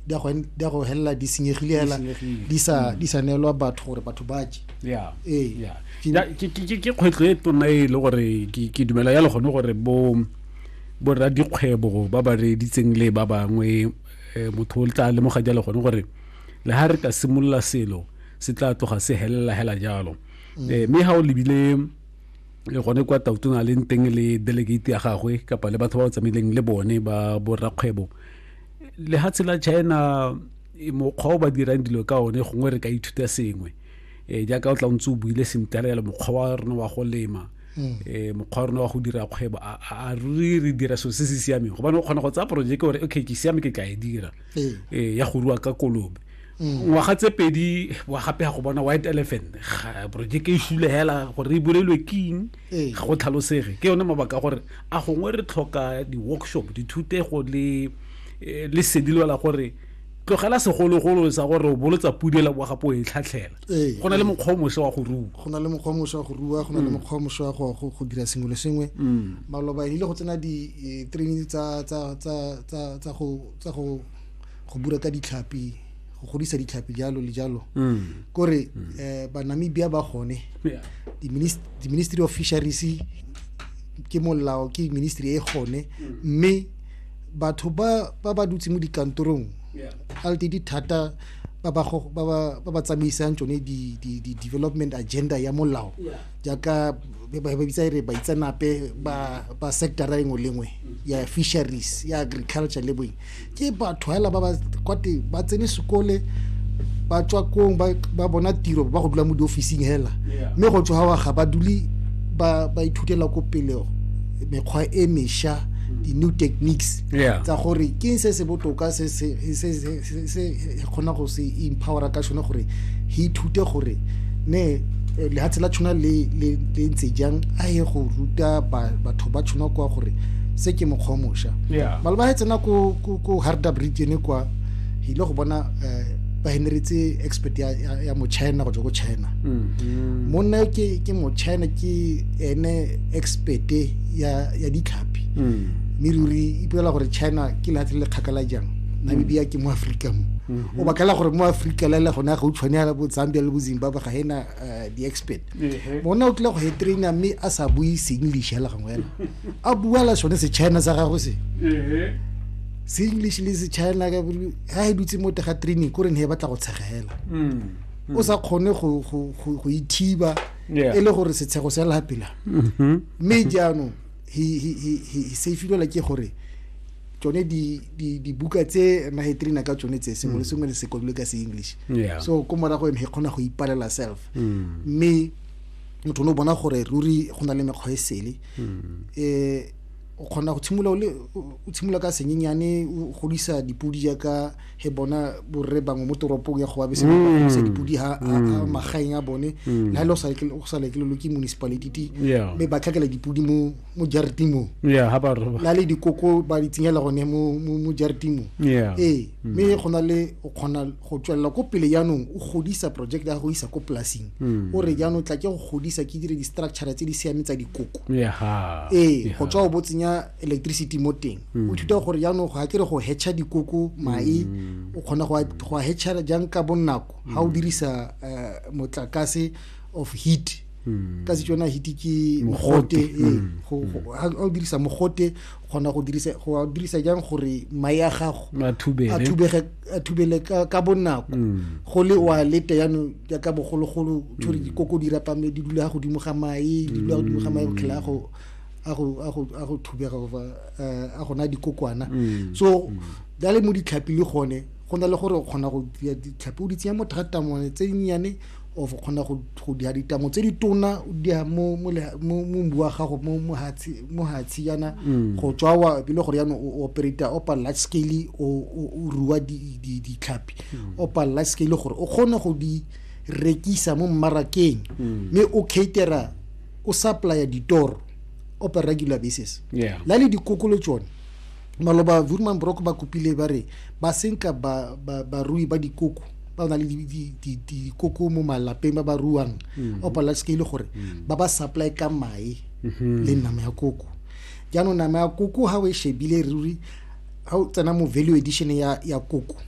di a go en- di a go helela di senyegile hela senyegile. di sa di sa neelwa batho gore batho ba je ya Ee. ya Ke- Ya, ke ke- ke- ke kgwetlho e tona e le gore ke ke dumela ya le gone gore bo bo rra dikgwebo ba ba reeditseng le ba bangwe eh, motho o tla lemoga jalo gone gore le ha re ka simolola selo se tla tloga se helela hela jalo Eh, mme ha o lebile eh, gone kwa tautona leng teng le delegate ya gagwe kapa le batho ba o tsamaileng le bone ba bo rrakgwebo lehatshe la china e, mokgwa o ba dirang dilo ka one gongwe re ka ithuta sengwe um jaaka o tla ntse o buile sentle le mokgwa wa rona wa go lema um mokgwa wa rona wa go dira kgwebo a re re dira selo se se siameng gobane o kgona go tsaya projeke gore okay ke siame ke tla e dira um ya go rua ka kolobe mm. ngwaga tse pedi wa gape ya go bona white elephant projeke e fula fela gore e bolelwe king ee. ga go tlhalosege ke yone mabaka a gore a gongwe re tlhoka di-workshop dithutego le eh, le sedi lwela gore tlogela segologolo sa gore o bolotsa pudela wa gapo e tlhatlhela ee. go na le mokgwa o mošwa wa go rua go na le mokgwa o mošwa wa go rua go na le mm. mokgwa o mošwa wa go go dira sengwe le sengwe mm. maloba ile go tsena di-training eh, tsa go bura ka ditlhapi go godisa ditlhapi jalo le jalo mm. kore mm. eh, banamibia ba gone di-ministry of fisheries ke molao ke ministry e gone mm. mme batho ba ba dutse mo dikantorong alte di thata ba ba tsamaisang tsone di-development agenda ya molao jaaka ba bitsa e re baitsenape ba ba sectora engwe le engwe ya fisheries ya agriculture le boeng ke batho hela ba ba kwate ba tsene sekole ba tswa kong ba bona tiro ba go dula mo diofising hela mme go tswa wa ga ba dule ba ba ithutela ko pele mekgwa e mesha di-new techniques tsa gore ke se se botoka se se e kgona go se empowera ka sone gore he ithute gore ne eh, lehatshe la tshwana le le ntse jang a ye go ruta batho ba tshwana kwa gore se ke mokgwa o mošwa maloba ga e tsena ko harda bridge ene kwa e ile go bona um ba henretse expert ya mochina go tswa ko china mm-hmm. monna ke mochina ke ene expert ya ditlhapi mm. mme ruri ipolela gore china ke lehatshe le le kgakala jang namibia ke mo aforika mo mhm. o bakela gore mo aforika le le gone gautshwane ya bo zambia le bo zimbabwe ga ena eh, di-expert mona o tlile go e traina mme a sa bue seenglish fela gangwe fela a bua la sone sechina sa gago se seenglish le sechina ga e dutse mo tega training ko re ne e batla go tshegela mm, mm. o sa kgone go ithiba e le gore setshego se lapela mhm. mme jaanong he safilwela ke gore tsone dibuka tse na he trina ka tsone tse sengwe le mm. sengwe le sekolole ka se-english so ko morago ene he kgona go ipalela self mm. mme motho o ne o bona gore ruri go na le mekgwa e sele um o kgona go tshimolola o tshimolola ka senyenyane o godisa dipodi jaaka he bona borre bangwe mo toropong ya go ba bese godisa mm. dipodi ha mm. magaeng a bone mm. le ha le o sa lekelelo ke municipality mme ba tlhakela dipodi mo mo jareteng mo yeah ha ba roba na le dikoko ba di tshenyela gone mo mo jareteng mo yeah eh mm. me go na le o khona go tswella ko pele yanong o godisa project ya go isa ko plasing mm. o re yanong tla ke go godisa ke dire di structure tse di siame tsa dikoko yeah ha eh go tswa o botsenya electricity mo teng mm. o thuta gore yanong go akere go hetcha dikoko mai o khona go go hetcha jang ka bonako ha o dirisa eh, motlakase of heat ka setswana hiti ke mogote ee ga o dirisa mogote kgona go dirisa go dirisa jang gore mae a gago a thubege a thubele ka bonako go le wa lete yano jaaka bogologolo thore dikoko di rapame di dula godimo ga mae di dula godimo ga mae go tlhela go a go a go a go thubega go eh, a gona dikokwana mm. so da le mo ditlhapi le gone go na le gore o kgona go ditlhapi o di tsenya mo thata mone tse nnyane o kgona go go diha ditamo tse di tona o diha mo mo mo mbu wa gago mo mo hatsi mo hatsi yana mm. go tswa wa e le gore yana o operata opa large scale o o ruwa di di di tlhapi mm. opa large scale gore o kgone go di rekisa mo mmarakeng mm. mme o catera o supplya ditoro opa regular basis la le dikokolo tsone maloba vurman brock ba kopile ba re ba senka barui ba dikoko ba na le dikoko mo malapeng ba ba ruang mm-hmm. o palela seke e le gore mm-hmm. ba ba supply ka mae mm-hmm. le nama ya koko jaanong nama ya koko ga o e shebile ruri ga o tsena mo value edition ya koko